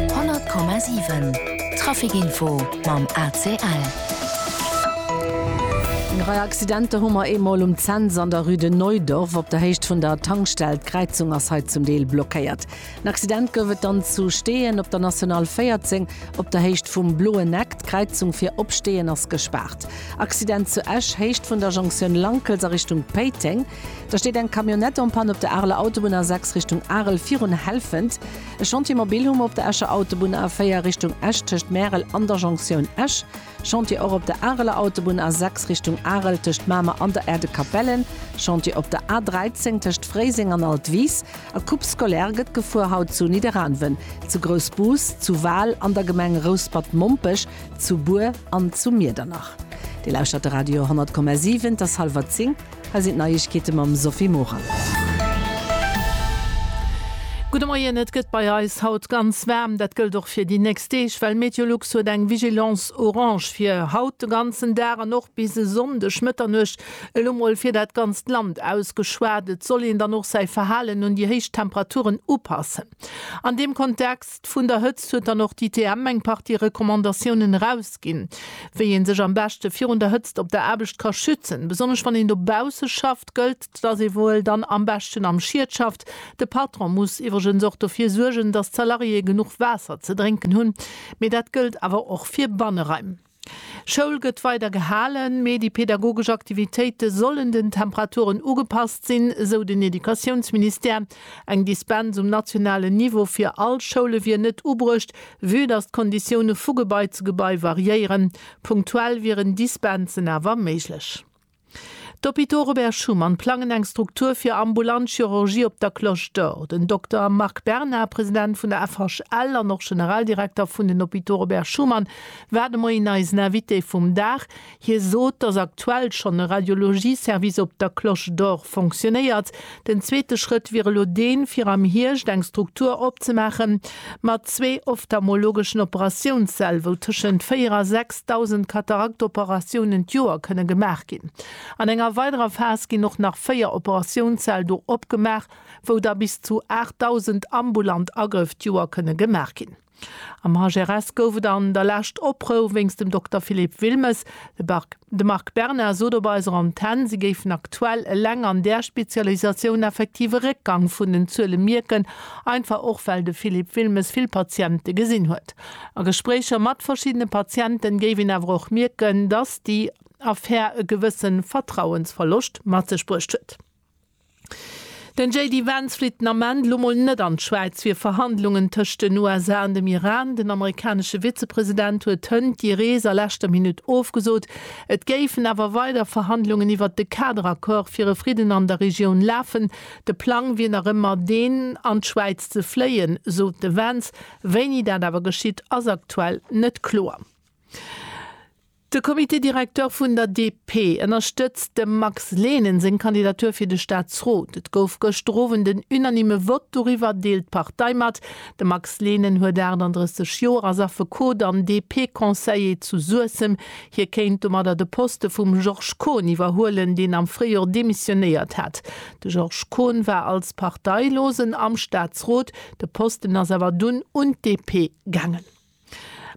100,7 Trafic-Info mam ACL. Eng Rei Accidenter hu mer eemol um Cents an der Rue de Neudorf. Op der Héicht vun der Tankstell, d'Kräizung ass hei zum Deel blockéiert. En Accident gouf et dann zu Steeën op der National 14 op der Héicht vum Bloen Eck. D'Kräizung fir op Steeën ass gespaart. Accident zu Esch, Héicht vun der Jonktioun Lankels a Richtung Péiteng. Da steet eng Camionnette en panne op der Areler Autobunn A6 Richtung Arel virun Helfent. E Chantier mobil hu mer op der Escher Autobunn A4 Richtung Esch tëscht Märel an der Jonktioun Esch. Chantier och op der Areler Autobunn A6 Richtung Arel tëscht Mamer an der Aire de Capelle. Chantier op der A13 tëscht Fréiseng an Altwis. A Coupe scolaire gëtt gefuer haut zu Nidderaanwen, zu Groussbus, zu Wal, an der Gemeng Rouspert-Mompech, zu Bur an zu Miedernach. Dir lauschtert de Radio 100,7. Et ass hallwer 10. Hei sinn d'Neiegkeete mam Sophie Morang. Gudde Moien, Et gëtt bei eis haut ganz waarm. Dat gëllt och fir déi nächst Deeg, well Meteolux huet eng Vigilance orange fir haut de ganzen Dag an och bis e Sonndeg Mëtternuecht. Elo mol fir dat ganzt Land ausgeschwat, Et soll een dann och säi Verhalen un déi héich Temperaturen upassen. An deem Kontext. Angst vun der Hëtzt huet dann och d'ITM eng Partie Recommandatiounen erausginn, wéi ee sech am beschte virun der Hëtzt op der Aarbecht ka schützen. Besonnesch wann een dobausse schafft, gëllt, dass ee wuel dann am beschten am Schiet schafft. De Patron muss iwwregens och dofir suergen, dass d'Salariéë genuch Waasser ze drénken hunn. Mee dat gëllt awer och fir Banneraim. Schoul gëtt weider gehalen, mee déi pedagogesch Aktivitéite sollen den Temperaturen ugepasst sinn, sou den Educatiounsministère. Eng Dispens um nationalen Niveau fir all Schoule wier net ubruecht, vue datt d'Konditioune vu Gebai zu Gebai variéieren. Punktuell wieren Dispensen awer méiglech. D'Hôpitaux Robert Schuman plangen eng Struktur fir ambulant Chirurgie op der Cloche d'Or. Den Dokter Marc Bernard, President vun der FHL an och Generaldirekter vun den Hôpitaux Robert Schuman, war de Moien eisen Invité vum Dag. Hie sot, datt aktuell schonn e Radiologie-Service op der Cloche d'Or fonctionnéiert. Den zweete Schrëtt wier elo deen, fir am Hierscht eng Struktur opzemaache mat zwee ophthalmologeschen Operatiounssäll, wou tëschent 4 a 6.000 Kataraktoperatiounen d'Joer kënne gemaach ginn. An enger weiderer Phas ginn och nach véier Operatiounssäll do opgemaach, wou da bis zu 8.000 ambulant Agrëff d'Joer kënne gemaach ginn. Am HRS gouf et an der lescht Oprou wéinst dem Dokter Philippe Wilmes. De Marc Berna sot op eiser Antenn, si géifen aktuell eleng an där Spezialisatioun effektiv e Réckgang vun den Zuele mierken, einfach och well de Philippe Wilmes vill Patiente gesinn huet. A Gespréicher mat verschiddene Patienten géif een awer och mierken, datt déi Affär e gewësse Vertrauensverloscht mat sech bruecht huet. Den JD Vance flitt den Ament lo mol net an d'Schwäiz fir Verhandlungen tëscht den USA an dem Iran. Den amerikanesche Vizepresident huet hënt déi Rees a leschter Minutt ofgesot. Et géifen awer weider Verhandlungen iwwert de Kaderaccord fir e Fridden an der Regioun lafen. De Plang wier nach ëmmer deen, an d'Schwäiz ze fléien, sot de Vance. Wéini dat awer geschitt, ass aktuell net kloer. De Comité directeur vun der DP ënnerstëtzt dem Max Lehnen seng Kandidatur fir de Staatsrot. Et gouf gëschter Owend en unanime Vott doriwwer, deelt d'Partei mat. De Max Lehnen huet 38 Joer, ass Affekot an DP-Conseiller zu Suessem. Hie kéint domadder de Poste vum Georges Kohn iwwerhuelen, deen am Fréijor demissionéiert hat. De Georges Kohn war als Parteilosen am Staatsrot, de Posten ass awer dunn un d'DP gaangen.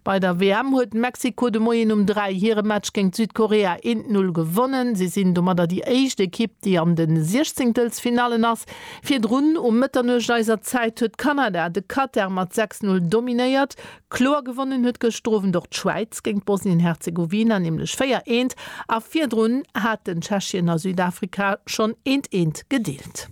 Bei der WM huet Mexiko de Moien um 3 hire Match géint Südkorea eent Null gewonnen. Si sinn domadder déi éischt Ekipp, déi an de Siechzéngtelsfinallen ass. Virdrun um Mëtternuecht eiser Zäit huet Kanada de Katar mat 6 Null dominéiert. Kloer gewonnen huet gëschter Owend och d'Schwäiz géint Bosnien-Herzegowina, nämlech 4 eent. A virdrun haten Tschechien a Südafrika schonn eent eent gedeelt. Land.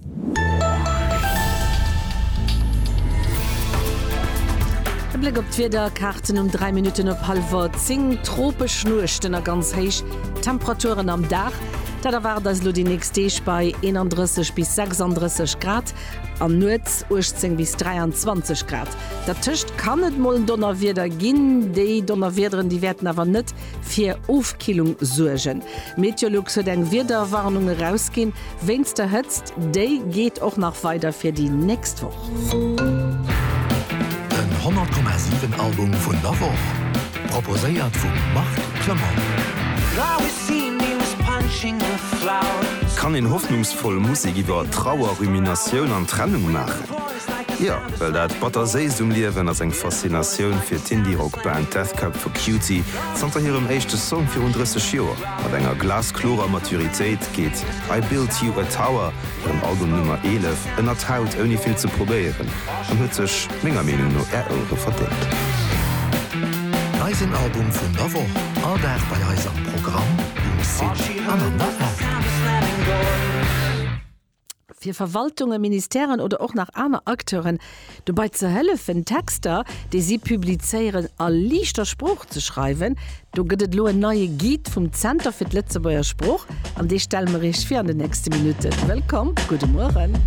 E Bléck op d'Wiederkaarten um 3 Minutten op hallwer 10, Tropesch Nuechten a ganz héich Temperaturen am Dag, dat erwaart eis elo déi nächst Deeg bei 31 bis 36 Grad an nuets 18 bis 23 Grad. Dertëscht kann et mol Donnerwieder ginn, déi Donnerwiederen, déi wäerten awer net fir Ofkillung suergen. Meteolux huet eng Wiederwarnung erausginn wéinst der Hëtzt. Déi geet och nach weider fir déi nächst Woch. Den 100,7 Album vun der Woch, proposéiert vum Marc Clement. Kann een hoffnungsvoll Musek iwwer Trauer, Ruminatioun an Trennung maachen? Jo, well dat Batter-Séisst um Liewen ass eng Faszinatioun fir d'Indie-Rock-Band Death Cab for Cutie. Zanter hirem éischte Song virun 30 Joer, mat enger glasklorer Maturitéit, geet I Built You a Tower, hirem Album Nummer 11, ënnert d'Haut ouni vill ze probéieren an huet sech menger Meenung no Är Ouere verdéngt. Eisen Album vun der Woch, all Dag bei eis am Programm, um Site an an der App. fir Verwaltungen, Ministèren oder och nach aner Acteuren dobei ze hëllefen, Texter, déi si publizéieren, a liichter Sprooch ze schreiwen. Do gëtt et elo en neie Guide vum Zenter fir d'Lëtzebuerger Sprooch, an dee stelle mer Iech vir an den nächste Minutten. Wëllkomm, gudde Mueren.